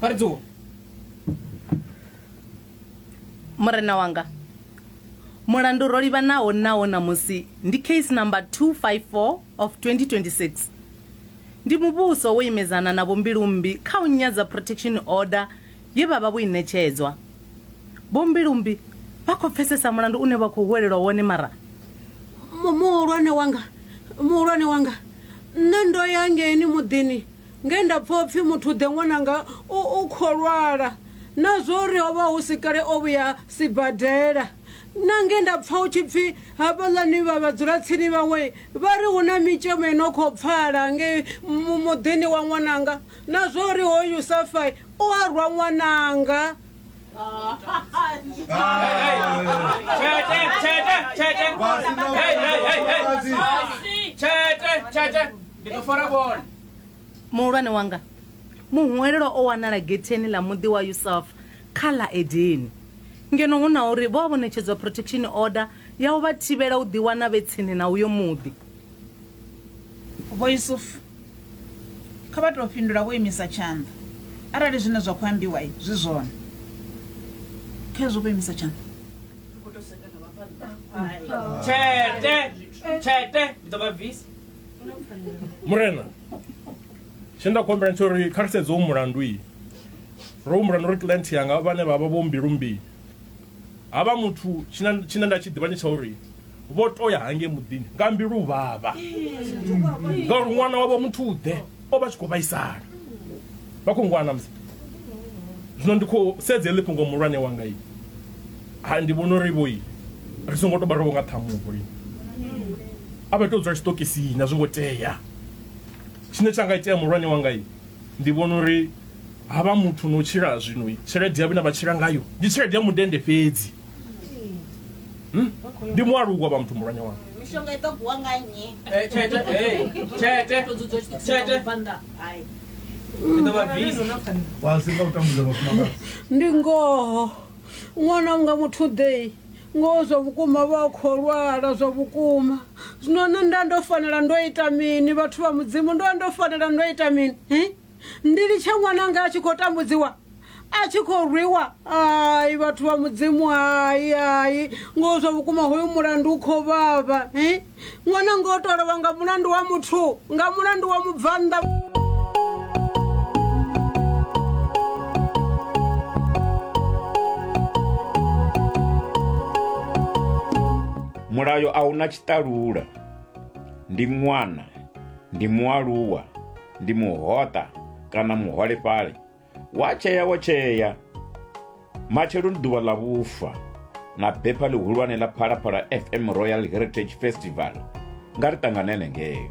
vha ri dzuwa murena wanga mulandu ro livhanaho nawo ṋamusi ndi case number 254 of 2026 ndi muvhuso wo imedzana na vhombilumbi kha u nyadza protection order ye vha vha vho i ṋetshedzwa vhombilumbi vha khou pfesesa mulandu une vha khou huwelelwa wone mara Mu- muhulwane wanga muhulwane wanga nṋe ndo ya ngeini muḓini nge nda pfa upfi muthu ḓe ṅwananga u u kho lwala na zwori ho vha hu si kale o vhuya sibadela na nge nda pfa hu tshi pfi hafhaḽani vha vhadzulatsini vhaṅwe vha ri hu na mitshemo i no khou pfala nge muḓini wa ṅwananga na zwori hoyu safai u a rwa ṅwananga muhulwane wanga muhwelelwa o wanala getheni ḽa muḓi wa yusuf kha ḽa edeni ngeno hu na uri vho a vho ṋetshedzwa protection order ya u vha thivhela u ḓiwana vhe tsini na uyo muḓi vho yusufu Kha vha tou fhindula vho imisa tshanḓa arali zwine zwa khou ambiwa zwi zwone. Khezwo vho imisa tshanḓa. Ri khou tou sedza na vhabvannḓa. Tshete! Tshete! Ndi ḓo vha bvisa. Murena, tshine nda khou humbela ndi tsha uri kha ri sedze u mulandu. Ro humbula na uri client yanga vhane vha vha vho mbilu mbi Ha vha muthu tshina tshina nda tshi ḓivha ndi tsha uri vho to ya hangei muḓini nga mbilu vhavha ngauri ṅwana wavho muthu u ḓe o vha tshi khou vhaisala vha khou ngwana musi zwino ndi khou sedza heḽi fhungo muhulwane wanga i ha ndi vhona uri vhoi ri songo to barowo nga ṱhamuho i a vha to dzula tshiṱokisini a zwi ngo tea tshine tsha nga itea muhulwane wanga i ndi vhona uri Ha vha muthu no tshila zwino tshelede yavho ine vha tshila ngayo ndi tshelede ya mundende fhedzi hmm? ndi mualuwa vha muthu mulwanya wanga mishonga i ḓo guwa nga nnyi eh, tshete eh, tshete tshete ndi ngoho ṅwana unga muthu ḓei ngoho zwa vhukuma vha kho lwala zwa vhukuma zwino nṋe nda ndo fanela ndo ita mini vhathu vha mudzimu ndo ndo fanela ndo ita mini ndi litshe ṅwananga a tshi khou tambudziwa a tshi khou rwiwa ai vhathu vha mudzimu hai hai ngo zwa vhukuma hoyu mulandu u khou vhavha eh? ṅwana ngo to lovha nga mulandu wa muthu nga mulandu wa mubvannḓa mulayo a una tshiṱalula ndi ṅwana ndi mualuwa ndi muhoṱa kana muholefhali wa tshea wo tshea matshelo ndi ḓuvha ḽa vhufa na bepha ḽihulwane ḽa phalaphala fm royal heritage festival nga ri ṱanganele ngeyo